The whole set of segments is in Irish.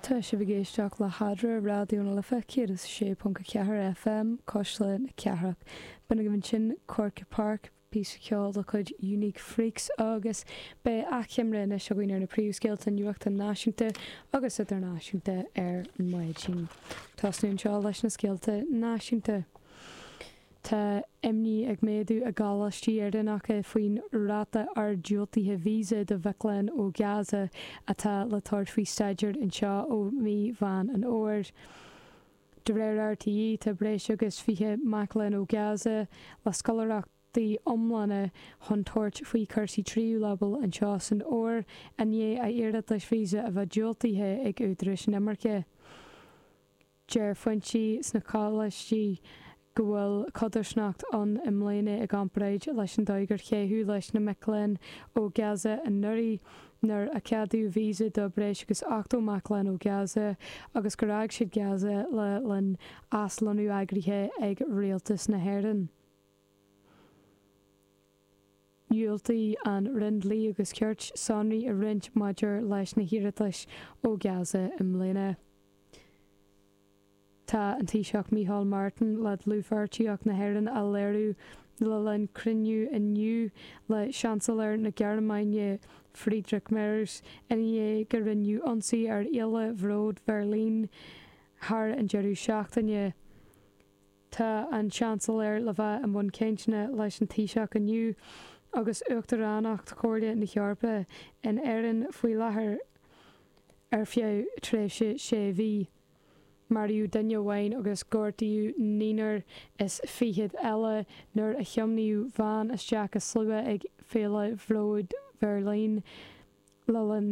Tá sibh ag éisteacht le hAdhmhaidin ar Raidió na Life 106.4 FM, Cuisle na Cathrach. B'in agaibh ansin Quirke Park, píosa ceoil de chuid Unique Freaks agus beidh achoimre anois againn ar na príomhscéalta nuachta náisiúnta agus idirnáisiúnta ar maidin. Tosnóimid anseo leis na scéalta náisiúnta. Tá imní ag méadú i gcoláistí Éireannacha faoin ráta ard diúltaithe visa do mhic léinn ó Gaza atá le tabhairt faoi staidéar anseo ó mhí Mheán an Fhómhair. De réir RTÉ tá breis agus 20 mac léinn ó Gaza le scoláireachtaí iomlána chun tabhairt faoi chúrsaí tríú leibhéal anseo san Fhómhar i ndiaidh a iarratais visa a bheith diúltaithe ag údaráis inimirce. Deir foinsí sna coláistí go bhfuil codarsnacht ann i mbliana i gcomparáid leis an dóigh ar caitheadh leis na mic léinn ó Gaza anuraidh nuair a ceadaíodh visa do breis agus 80 mac léinn ó Gaza agus gur fhág siad Gaza le linn aslonnú eagraithe ag Rialtas na hÉireann. Dhiúltaigh an Roinn Dlí agus Cirt sonraí a roinnt maidir leis na hiarratais ó Gaza i mbliana. Tá an Taoiseach Micheál Martin le dlúthpháirtíocht na hÉireann a léiriú le linn cruinniú inniu le Seansailéir na Gearmáine Friedrich Merz i ndiaidh go ndearnadh ionsaí ar Fhéile Bhróid Bheirlín thar an deireadh seachtaine. Tá an Seansailéir le bheith i mbun cainteanna leis an Taoiseach inniu agus Uachtaránacht Chomhairle na hEorpa in Éirinn faoi láthair ar feadh tréimhse sé mhí. Maraíodh duine amháin agus gortaíodh naonúr is fichead eile nuair a tiomáineadh veain isteach i slua ag Féile Bhróid Bheirlín le linn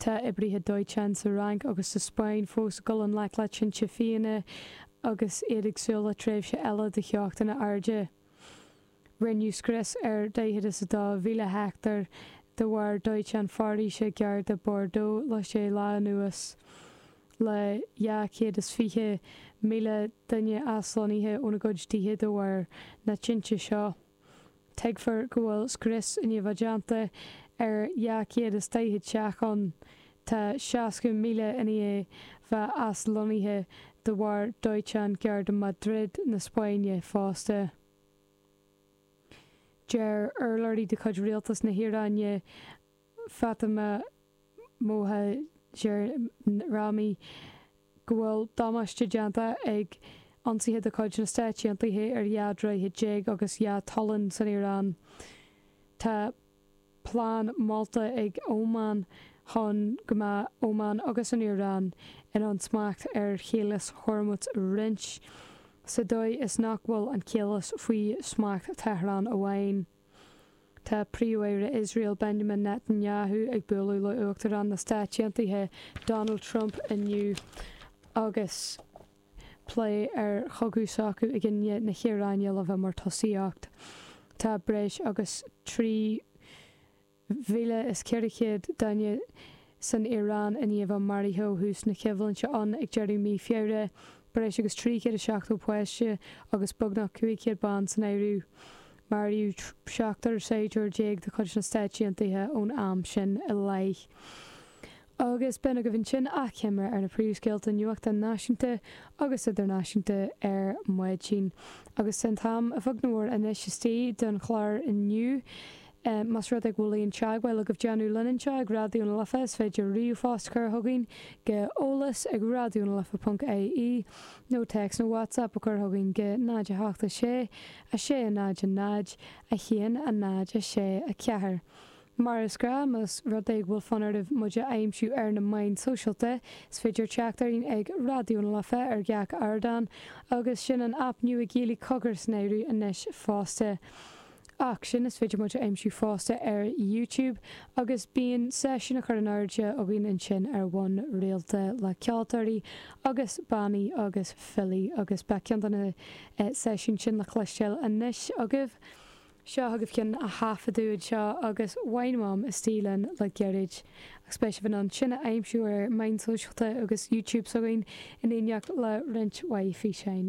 Tá oibrithe dóiteáin sa Fhrainc agus sa Spáinn fós ag dul i ngleic le tinte fiáine agus iad ag súil le tréimhse eile de theochtanna arda. Rinneadh scrios ar dhaichead is a dó mhíle heicteár de bharr dóiteán foraoise gar do Bordeaux le sé lá anuas, le dhá chéad is fiche míle duine aslonnaithe óna gcuid tithe de bharr na tinte seo. Tuigtear go bhfuil scrios i ndiaidh a bheith déanta ar 240 teach ann, tá 60,000 i ndiaidh a bheith aslonnaithe de bharr dóiteán gar do Madrid na Spáinne fosta. Deir urlabhraí de chuid rialtas na hIaráine, Fatemeh Mohajerani go bhfuil damáiste déanta ag ionsaithe de chuid na Stáit Aontaithe ar dhá droichead déag agus dhá tolláin san Iaráin. Tá plean molta ag Óman chun go mbeadh Óman agus an Iaráin in ann smacht ar Chaolas Hormuz a roinnt, sa dóigh is nach bhfuil an Chaolas faoi smacht Tehran amháin. Tá Príomh-Aire Iosrael Benjamin Netanyahu ag bualadh le Uachtarán na Stáit Aontaithe Donald Trump inniu agus plé ar chogadh s'acu i gcoinne na hIaráine le bheith mar tosaíocht. Tá breis agus 3 mhíle is 400 duine san Iaráin i ndiaidh a maraithe ó thús na coimhlinte ann ag deireadh mí Feabhra, breis agus 370 páiste agus beagnach 500 bean san áireamh. Maraíodh seachtar saighdiúir déag de chuid na Stáit Aontaithe ón am sin i leith agus b'in agaibh ansin achoimre ar na príomhscéalta nuachta náisiúnta agus idirnáisiúnta ar maidin agus an t-am a bheag nó mór anois istigh don chlár inniu. Más rud é go bhfuil aon teagmháil agaibh déanamh linn anseo ag Raidió na Life is féidir ríomhphost a chur chugainn go eolas ag raidionalife.ie nó téacs nó WhatsApp a chur chugainn go 086 600 1064. Mar is gnách más rud é go bhfuil fonn oraibh muid a aimsiú ar na meáin sóisialta, is féidir teacht orainn ag Raidió na Life ar gach ardán agus sin an aip nua Gaeilge Cogar san áireamh anois fosta. Ach sin is féidir muid a aimsiú fosta ar YouTube agus bíonn seisiúin á chur in airde againn ansin ar bhonn rialta le ceoltóirí agus bannaí agus filí agus beidh ceann de na seisiúin sin le cloisteáil anois agaibh. Seo chugaibh ceann a thaifeadadh anseo agus bhain Mam istigh linn le gairid, agus beidh sibh in ann sin a aimsiú ar meáin sóisialta agus YouTube s'againn in éineacht le roinnt mhaith físeáin.